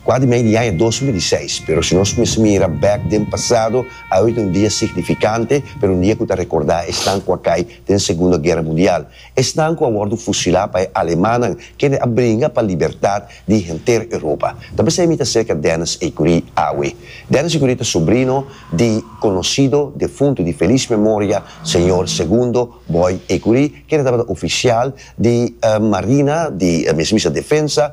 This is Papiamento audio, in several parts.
Kua di mei di aña dos mil i seis, pero si nos mester mira bek den pasado, awe ta un dia signifikante, pero un dia ku ta rekordá esnan ku a kai den Segundo Guera Mundial, esnan ku a wòrdu fusilá pa e alemannan kende a bringa pa libertat di henter Europa. Ta p'esei mi ta serka Dennis Ecury awe. Dennis Ecury ta sobrino di konosido defuntu di felis memoria señor Segundo Boy Ecury, kende tabata ofisial di Marina, di mester bisa Defensa,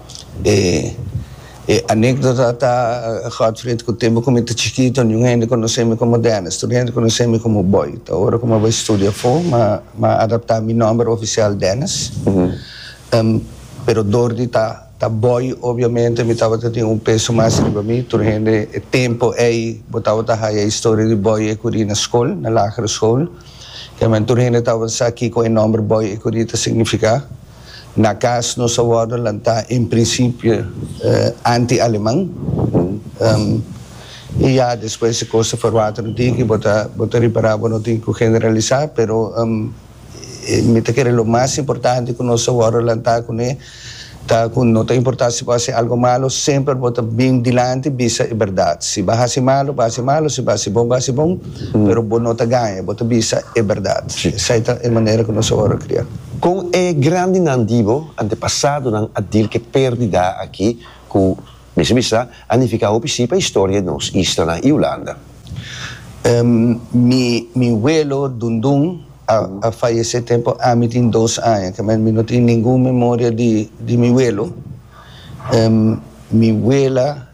E anekdota ta, Godfried ku tempu ku mi ta chikito niun hende konosé mi komo Dennis. Tur hende konosé mi komo Boy. Ta ora ku mi a bai studia afó mi a adaptá mi nòmber ofisial Dennis. Pero dor di ta ta Boy obiamente mi tabata tin un peso mas riba mi. Tur hende e tempu ei bo tabata haya e historia di Boy ei kuri na skol, na lagere skol. Kieman tur hende tabata sa kiko e nòmber Boy ei kuri ta signifiká. Na cas nos a wordo lantá en principio anti Aleman, y ya despues si cos ta verwater un tiki bo ta bo ta repará bo no tin cu generalisá, pero mi ta kere lo mas importante cu nos a wordo lantá cune ta cu no ta importá si bo hasi algo malo semper bo ta bin dilanti bisa e berdad, si bo hasi malo bo hasi malo si bo hasi bon bo hasi bon. Pero bo no ta gaña, bo ta bisa e bèrdat. Esei ta e manera ku nos a wòrdu kriá. Kon e grandinan di bo antepasadonan a dil ku e pèrdida aki ku, mester bisa, a nifiká hopi sí pa historia di nos islanan i Hulanda? Mi welo, Dundun, a fayesé tempu ami tin dos aña. Kèmen mi no tin ningun memoria di mi welo. Mi wela.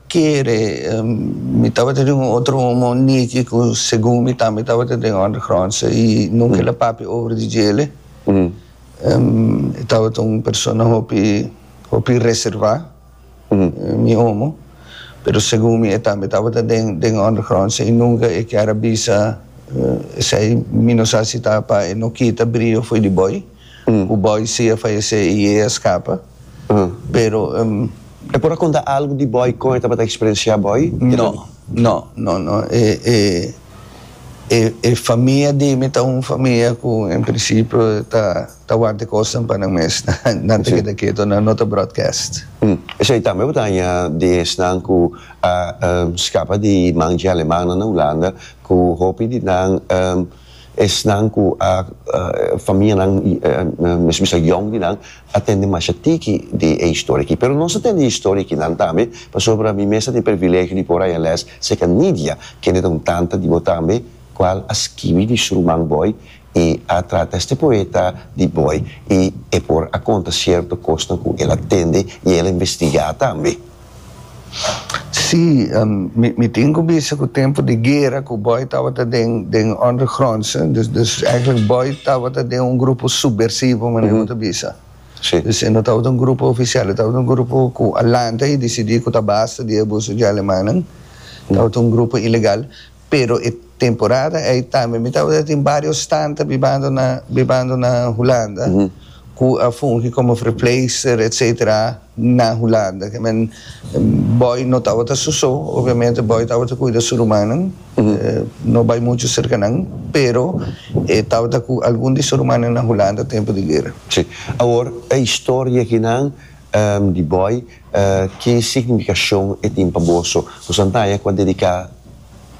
Kere mi tabata den un otro homo Nicky cu segun mi tambe tabata den undergrondse y nunca el a papia over di djele. E tabata un persona hopi hopi reserva, mi homo, pero segun mi e tambe tabata den den undergrondse y nunca e kier a bisa esey mi no sa si ta pa e no kita brio foey di boy. ku bòi si a fayesé i e a skapa, pero e. E por a konta algu di bòi kon e tabata eksperensiá bòi? No, no, no, no. E, e, e, e famia di mi ta un famia ku en prinsipio ta ta wanta e kosnan pa nan mes, nan ta keda keto, nan no ta broadcast. Esei tambe bo ta haña di esnan ku a skapa di manchi alemannan na Hulanda, ku hopi di nan. Esnan ku a famianan mesun bisa yòn di nan a tende masha tiki di e historia aki. Pero nos a tende e historia aki nan tambe pasobra mi mes a tin privilegio di por a haña lès serka Nidia, kende ta un tanta di bo tambe, kual a skibi di su ruman Boy i a trata este poeta di Boy i e por a konta sierto kosnan ku el a tende i el a investigá tambe. Sí, mi tin ku bisa ku tempu di guera ku Boy tabata den den undergronds, dus dus eigenlijk Boy tabata den un grupo subversivo manera ku bo ta bisa. Sí. Dus e no tabata un grupo ofisial, e tabata un grupo ku a lanta i disidí ku ta basta di e abuso dje alemannan, tabata un grupo ilegal. Pero e temporada ei tambe mi tabata tin bario stanta bibando na bibando na Hulanda ku a fungi komo verpleegster etc na Hulanda ke men Boy no tabata su so obviamente Boy tabata kuida su rumannan no bai muchu serka nan pero e tabata ku algun di su rumannan na Hulanda tempu di guera. Si awor e historia kinan di Boy. Ki signifikashon e tin pa boso? Kusnan ta haña ku a dediká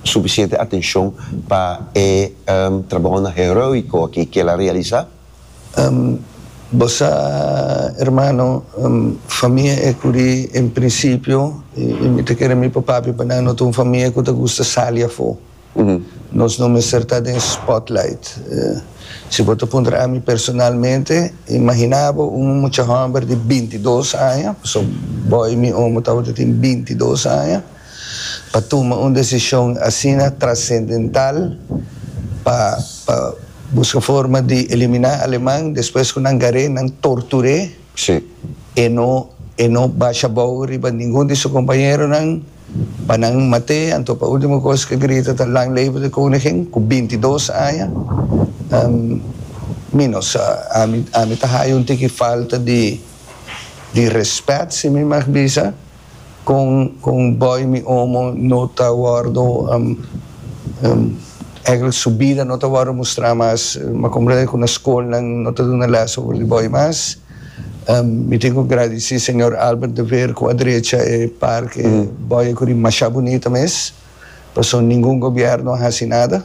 sufisiente atenshon pa e trabounan heróiko akí ku el a realisá? Bo sa, ermano, famia e ku di un prinsipio, i mi ta kere mi papá biba nan, no ta un famia ku ta gusta sali afó. Nos no mester ta den spotlight. Si bo ta puntra ami personalmente, imaginabo un mucha hòmber di binti dos aña, pasobra bo i mi omo tabata tin binti dos aña, pa tuma un desishon asina trascendental pa pa buska forma di eliminá aleman despues ku nan gar'é, nan tortur'é, e no e no basha bou riba ningun di su kompañeronan. Pa nan mat'é, anto pa último kos ke grita ta Lang Leven de Koningin, ku binti dos aña mínos. Sa, ami, ami ta haya un tiki falta di, di rèspèt, si mi mag bisa, kon, kon bòi mi omo no ta wòrdu, ègèlek su bida no ta wòrdu mustrá mas. Mi a komprendé ku na skolnan no ta duna lès over di bòi mas. Mi tin cu gradeci Señor Albert de Veer cu a drecha e parke Boye Curi masha bunita mes, pasobra ningun gobierno a haci nada.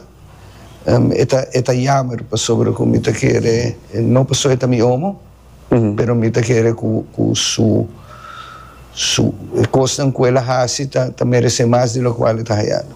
E ta e ta jammer pasobra cu mi ta kere, no pasobra e ta mi omo, pero mi ta kere cu cu su su e cosnan cu el a haci ta ta merece mas di locual e ta hayando.